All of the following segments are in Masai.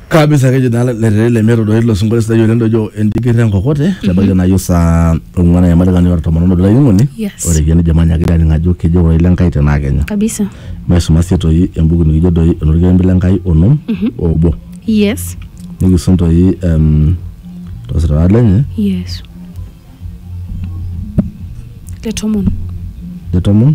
kabisa akejo naa letere lemeeta doi ilo sinkolio sidai oleng dojo entikirra enkokote tebaiki naajo saa ong'uan ayamalikani ora tomon obo olainining'oni Yes. ore kiani jamani akira aning ajo kejo ore ile nkai tenaa kenya kabisa maisuma sii toi embuku nikijo doi enorkirembe le nkai onom obo yes nikisum toi em, tosirata lenye yes le tomon le tomon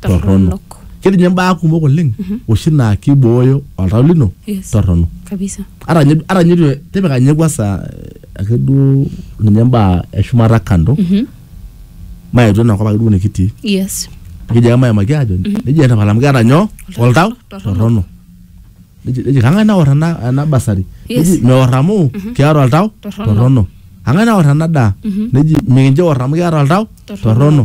torrono ketii ninye mbaa kumok oleng oshi naa kibooyo oltau lino Yes. torrono kabisa ata nye ata nye tu- tipika nye kwanza eh, ake duo ninye mbaa eshumata kando maetu enakop ake duo nikitii yes nikiji ake maimaki ajo nejia etapala amu keeta nyoo oltau torrono. torrono Neji- neji kang'ae naor ena ena basari Yes. neji meor amu keeta oltau Torrono. torrono kang'ae naor ena daa neji mikincho eor amu keeta oltau Torrono. torrono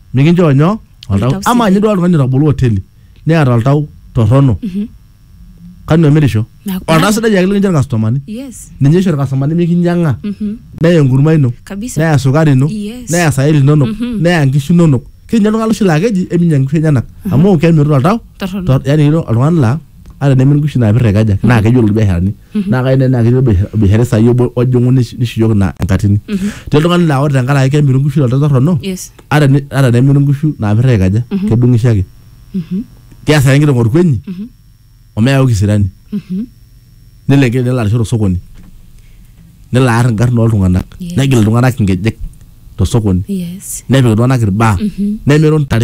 mikinchoo nyoo Oltau oltau sidai. ama ninye duo oltung'ani otabolo hoteli neeta oltau torrono kanu emirisho Neeku- oltau sidai ake likincho irkastomani yes ninye isho irkastomani mikinyang'a Mhm. neya enkurma ino kabisa neya sukari ino Yes. neya sairi inonok neya nkishu inonok kinya oltung'ani loshi laa keji eminya nkishu enyenak amu kemirita oltau Torrono. tor- yaani ilo oltung'ani laa ata nemin nkishu naapir aikaja naa keyiolo irbiasharani naa kayieu nena kiti bish- bisharai sai obo ojing'u nish- nishukoki ina enkatini te oltung'ani laa ore tenkaraki kemiru nkishu toltau torrono yes ata ni- ata nemiru nkishu naapirra aikaja kedung'isho ake keas ake enkiteng orkuenyi omeyau kisirani nelo enkiteng nelo arisho tosokoni nelo aar inkarn oltung'anak Yes. negil iltung'anak inkejek tosokoni yes nepik iltung'anak irbaa nemiru ntare